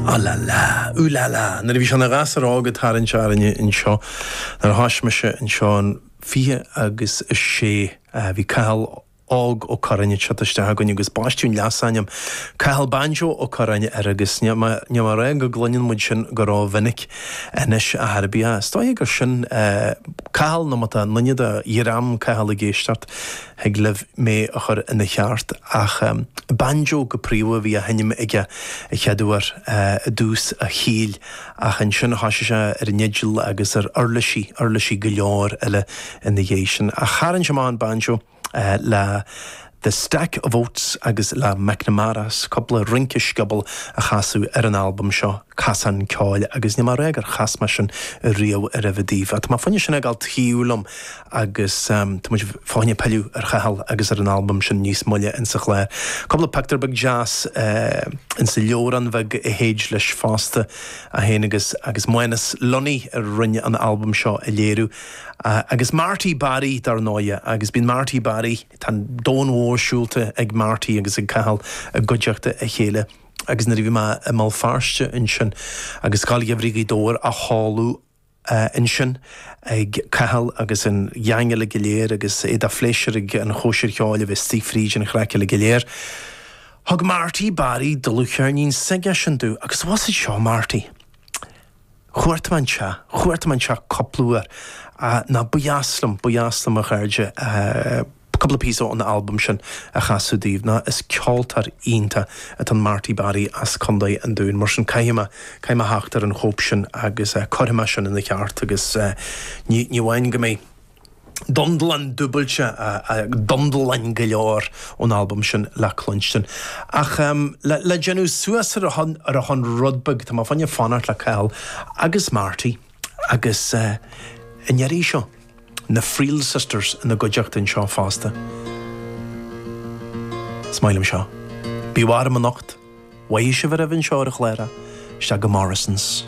Ah la la, ooh la la, nuair a bhí sé ina ghasúr óg ag tarraingt orainne anseo, nuair a thosaigh mise anseo in fiche agus a sé, bhí Cathal óg Ó Curráin ag teacht isteach chugainn agus baisteadh an leasainm 'Cathal Banjo Ó Curráin' air agus níl mé ag rá go gcluineann muid sin go ró-mhinic anois ar chor ar bith. Is dóiche gur sin é Cathal nó má tá aon duine de dhream Chathail ag éisteacht, Thig libh mé a chur ina cheart, ach Banjo go príomha a bhí á sheinnim aige a chéaduair i dtús a shaoil, ach ansin thoisigh sé ar an fhidil agus ar uirlisí, uirlisí go leor eile ina dhiaidh sin. Ach tharraing sé amach an banjo le The Stack of Oats agus le McNamara's, cúpla rince sciobóil a chasadh ar an albam seo, Cosán Ceoil, agus níl mé ag rá gur chas mé sin riamh aroimhe daoibh. Tá mo phoinéis sin ag dul taobh liom. agus tá muid féin ag pilleadh ar Chathal agus ar an albam sin níos moille insa chlár. Cúpla pictiúr beag deas insa leabhrán bheag a théid leis fosta, é féin agus agus Manus Lunny a rinne an albam seo a léiriú. Agus Marty Barry dar ndóighe, agus bíonn Marty Barry, tá an domhan mhór siúlta ag Marty agus ag Cathal i gcuideachta a chéile. Agus nuair a bhí mé i mBéal Feirste ansin agus Scoil Gheimhridh Ghaoth Dobhair á cheiliúradh, ansin ag Cathal agus an geaing uilig go léir agus é de phléisiúr ag an chóisir cheoil a bheith istigh fríd an chraic uilig go léir. Thug Marty, Barry, dlúthcheirnín s'aigesean domh agus bhásaigh seo Marty. Chuartaigh mé an teach, chuartaigh mé an teach cúpla uair, nó ba dheas liom, ba dheas liom a chairde. Cúpla píosa ón albam sin a chasadh daoibh nó, is ceoltóir iontach atá in Marty Barry as Contae an Dúin, mar sin caithfidh mé, caithfidh mé a theacht ar an chóip sin agus cuirfidh mé sin ina cheart agus ní, ní amháin go mbeidh Dundalán dúbailte ach Dundalán go leor ón albam sin le cluinstin. Ach le, le déanamh suas ar a shon, ar a shon rud beag, tá mé féin ag fanacht le Cathal agus Marty. Agus an iarraidh seo. Na Friel Sisters ina gcuideachta anseo fosta. Is maith liom seo. Bí warm anocht. Mhaith sibh aroimhe anseo ar an chlár. Isteach go Morrisons.